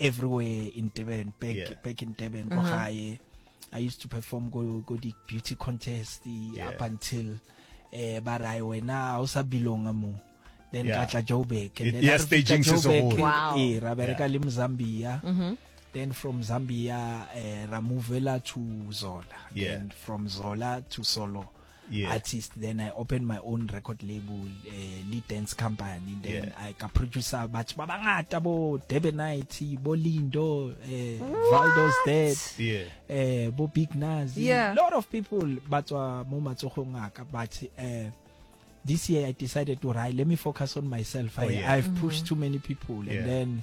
everywhere in Durban back yeah. back in Durban mm -hmm. I used to perform go go the beauty contest yeah. up until eh ba ra wena o sa belonga mo then yeah. ka tla Joburg and then yes, after Joburg wow. eh ra bereka yeah. le Mzambia mm -hmm. then from Zambia eh, ra movela to Zola yeah. and from Zola to Solo yes. artist then i opened my own record label uh, lead dance company then yeah. i ka producer batho ba bangata bo debonite bo lindo uh, valdos dead yeah. uh, bo big nas yeah. a lot of people ba tswa mo matsogong a ka but uh, this year i decided to right let me focus on myself oh, I, yeah. i've pushed mm -hmm. too many people yeah. and then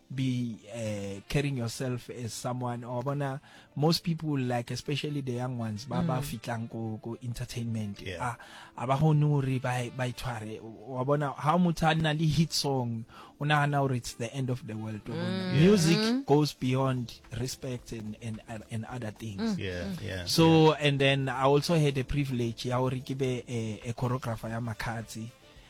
be uh, carrying yourself as someone or bona most people like especially the young ones ba ba mm. fitlang ko ko entertainment yeah. a a ba hone hore ba ba itshware wa bona ha motho a na le hit song o nagana hore it's the end of the world wa bona mm. music mm. goes beyond respect and and and other things yeah yeah so yeah. and then i also had the privilege ya hore ke be a, a choreographer ya makhatsi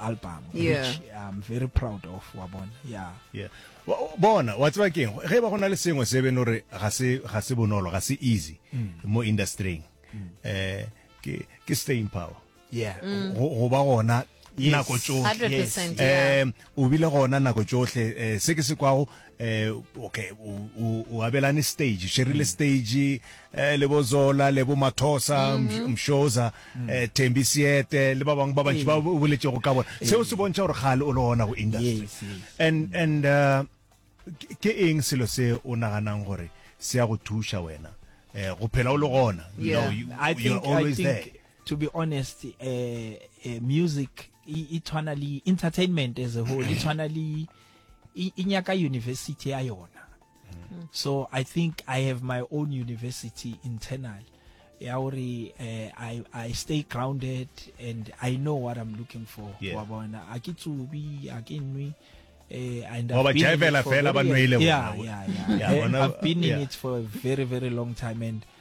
album yeah. which I'm very proud of wa bona yeah yeah bona wa tseba keng ge ba gona le sengwe se beno re ga se ga se bonolo ga se easy mm. mo industrying mm. eh ke ke staying power yeah mm. go ba gona nako tsohle eh, o bile gona nako tsohle eh, se ke se kwago eh okay o abelane stage sherile mm. stage eh le bozola le bo mathosa mm-hmm. mshoza mm. eh thembi siete le ba bang ba bantsi ba boletse go ka bona seo se bontsha gore gale o le ona go industry and and uh, ke eng selo se o naganang gore se ya go thuša wena eh go phela o le gona you know you, you're always there to be honest uh, uh, music itshwana le entertainment as a whole itshwana le e, e nyaka university ya yona mm. so i think i have my own university internal ya gore eh, I, i stay grounded and i know what i'm looking for wa bona a ke tsubi a ke nwe eh, and I've been, in it for, very, yeah, yeah, yeah. yeah, I've been in it for a very very long time and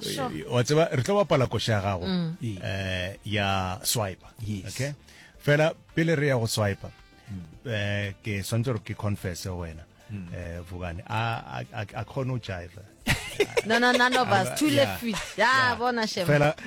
Sure. Eh, wa tseba re tlo bapala koša ya gago um ya swipe Yes. okay fela pele re ya go swipe um ke swantse gore ke confesse go wena um vukane a a- a- a kgone go jive no no none of us two Yeah. left feet ya Yeah. bona shem fela